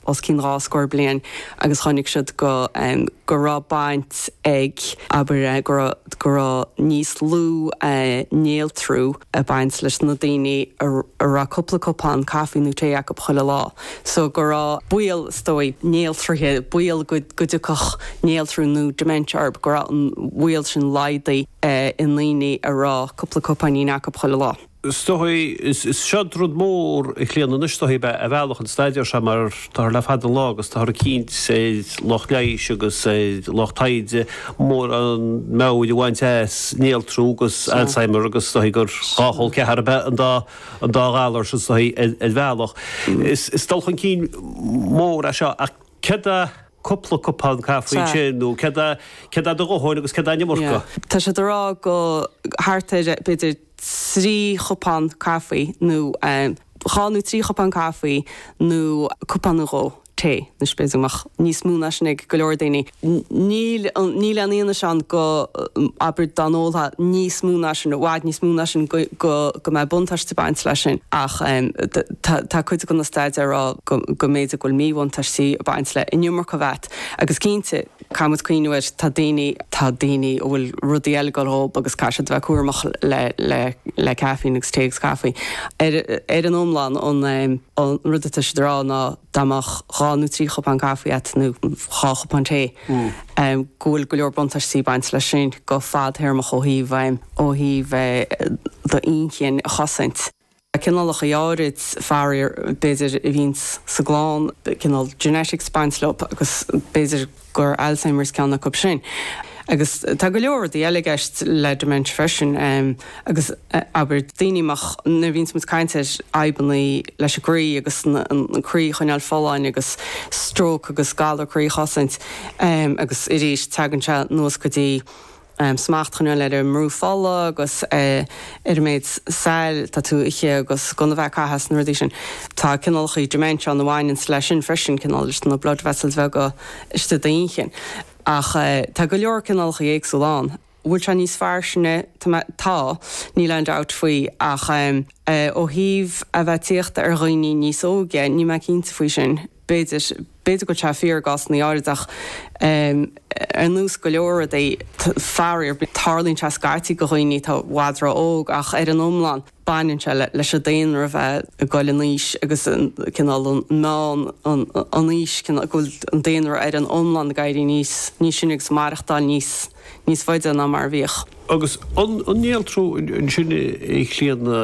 os cionn dhá scór bliain agus chonaic siad go, go raibh baint ag, abair, go raibh, go raibh níos lú néaltrú ag baint leis na daoine a raibh cúpla cupán caife nó tae acu chuile lá. So, go raibh baol, is dóigh, néaltraithe, baol go, go dtiocfadh néaltrú nó dementia orthu, go raibh an baol sin laghdaithe i ndaoine a raibh cúpla cupán acu chuile lá. stocaí, is sea rud mór, a Chlíodhna, anois is dóichí ar bhealach an staidéar seo mar táthar le fada an lá, táthar ag cinnt, lucht leighis agus lucht taighde, mórán meabhair a bhaint as néaltrú agus Alzheimer agus is dóichí gur dhá chol ceathar ab ea an dá ghalar sin, is dóichí ar bhealach. Is dul chun cinn mór é seo ach céard é cupla cupán caife sin nó céard é do dhóthain agus céard é an iomarca? Tá siad a' rá go thart ar b'fhéidir. trí chupán caifí nó dhá nó trí chupán caifí nó cupán nó dhó tae now b'fhéidir go mbeadh níos mó ná sin ag go leor daoine. Níl níl aon fhianaise ann go, abair, dá n-ólfá níos mó ná sin, i bhfad níos mó ná sin, go mbeadh buntáiste ag baint leis sin ach tá cuid de na staidéir ag rá go mb'fhéidir go bhfuil míbhuntáistí ag baint le an iomarca a bheith agat agus cinnte, Caithfidh muid cuimhniú ar ndóigh, tá daoine, tá daoine a bhfuil rudaí eile ag dul dhóib agus caithfidh siad a bheith cúramach le, le, le caifín agus tae agus caife. Ar, ar an iomlán, an, an rud atá siad a rá ná dá mbeadh dhá nó trí chupán caife agat nó dhá chupán tae, go bhfuil go leor buntáistí ag baint leis sin go fadthéarmach ó thaobh, ó thaobh do inchinn a chosaint. cineálacha áirid, faraor, b'fhéidir a bhíonns sa gclann, cineál genetics ag baint leob, agus b'fhéidir gur Alzheimer's ceann acu sin. Agus tá go leor rudaí eile i gceist le dementia freisin, agus abair, daoine amach, nuair a bhíonns muid ag caint ar fhadhbanna leis an gcroí agus an croí a choinneáil folláin agus stróc agus galar croí a chosaint, agus arís, tagann sé anuas go dtí. smacht a choinneáil ar an mbrú fola agus ar an méid saill atá tú a ithe agus gan a bheith ag caitheamh is na rudaí sin. Tá cineálacha dementia ann a bhaineanns leis sin freisin, cineál leis na blood vessels bheaga istigh i d'inchinn. Ach tá go leor cineálacha éagsúla ann. An bhfuil sé níos fairsinge? Tá, níl aon dabht faoi, ach ó thaobh a bheith tíochta ar dhaoine níos óige, níl mé cinnte faoi sin. B'fhéidir, b'fhéidir go bhfuil sé fíor i gcásanna áirid ach ar nós go leor rudaí, faraor, tarlaíonn sé scaití go dhaoine atá i bhfad ró-óg ach ar an iomlán baineann sé leis an daonra a bheith ag goil in aois agus an cineál, an meánaois, go bhfuil an daonra ar an iomlán ag éirí níos sine agus ag maireachtáil níos faide ná mar a bhíodh. Agus an néaltrú ansin, a Chlíodhna,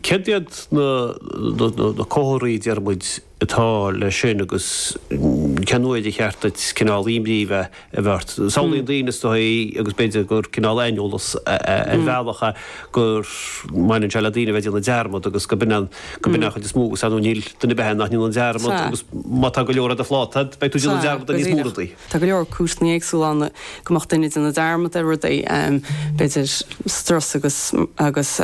céard iad na comharthaí, a déarfadh muid, atá leis sin agus cén uair a cheart dhuit cineál imní a bheith ort. Samhlaíonn daoine is dóigh agus b'fhéidir gur cineál aineolas ar bhealach é go mbaineann sé le daoine a bheith ag déanamh dearmad agus go b'in an go b'in an chuid is mó dhe agus ar ndóigh níl duine ar bith ann nach ndéanann dearmad agus má tá go leor ar do phláta beidh tú ag déanamh dearmad ar níos mó rudaí. Tá go leor cúiseanna éagsúla ann go mbeadh duine ag déanamh dearmad ar rudaí, b'fhéidir strus agus agus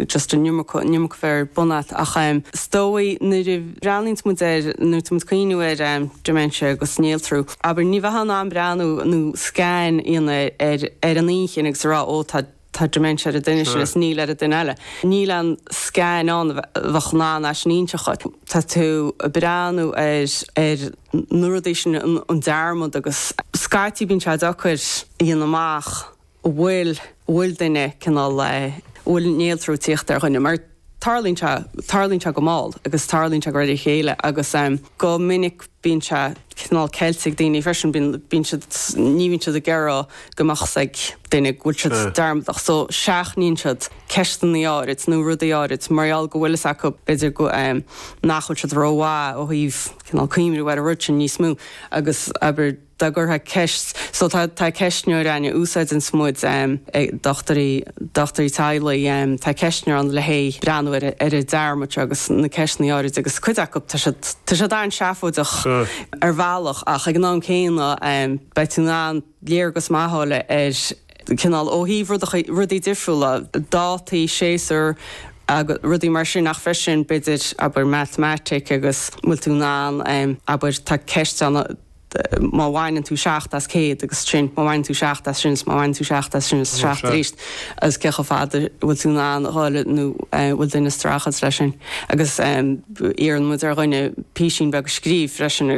just an iomarca a bheith ar bun agat ach is dóigh nuair a bhreathnaíonns muid ar, nuair a bhíonn muid ag cuimhniú ar dementia agus néaltrú, abair, ní bheifeá in ann breathnú nó scan a dhéanamh ar an inchinn agus a rá 'ó tá Tá dementia ar an duine sin is níl ar an duine eile. Níl an scan ann a bheadh in ann é sin a inseacht dhuit. Tá tú ag breathnú ar na rudaí sin, an dearmad agus scaití bíonn sé deacair a dhéanamh amach an bhfuil duine cineál, an bhfuil néaltrú ag tíocht ar dhuine mar tarlaíonn sé, tarlaíonn sé go mall agus tarlaíonn sé de réir a chéile agus go minic bíonn sé cineál ceilte ag daoine freisin, bíonn, bíonn siad, ní bhíonn siad ag iarraidh go mbeadh 's ag duine go bhfuil siad dearmadach so seachnaíonn siad ceisteanna áirid nó rudaí áirid mar gheall go bhfuil fhios acu b'fhéidir go, nach bhfuil siad rómhaith ó thaobh cineál cuimhniú ar an rud sin níos mó agus abair. dá gcuirfeá ceist, so tá tá ceistneoir ann a úsáideann muid, dochtúirí, dochtúirí teaghlaigh, tá ceistneoir ann le haghaidh breathnú ar ar an dearmad seo agus na ceisteannaí áirid agus cuid acu tá siad, tá siad an-seafóideach ar bhealach ach ag an am céanna beidh tú in ann léargas maith a fháil ar cineál ó thaobh rud rudaí difriúla, dátaí, séasúir agus rudaí mar sin ach freisin b'fhéidir, abair, matamaitic agus bhfuil tú in ann, abair, tá ceist ann a. má bhaineann tú seacht as céad agus sin, má bhaineann tú seacht as sin is má bhaineann tú seacht as sin is seacht arís agus cé chomh fada bhfuil tú in ann a dhul nó bhfuil duine ag strachailt leis sin agus iarrann muid ar dhuine písín beag eicínt a scríobh freisin agus.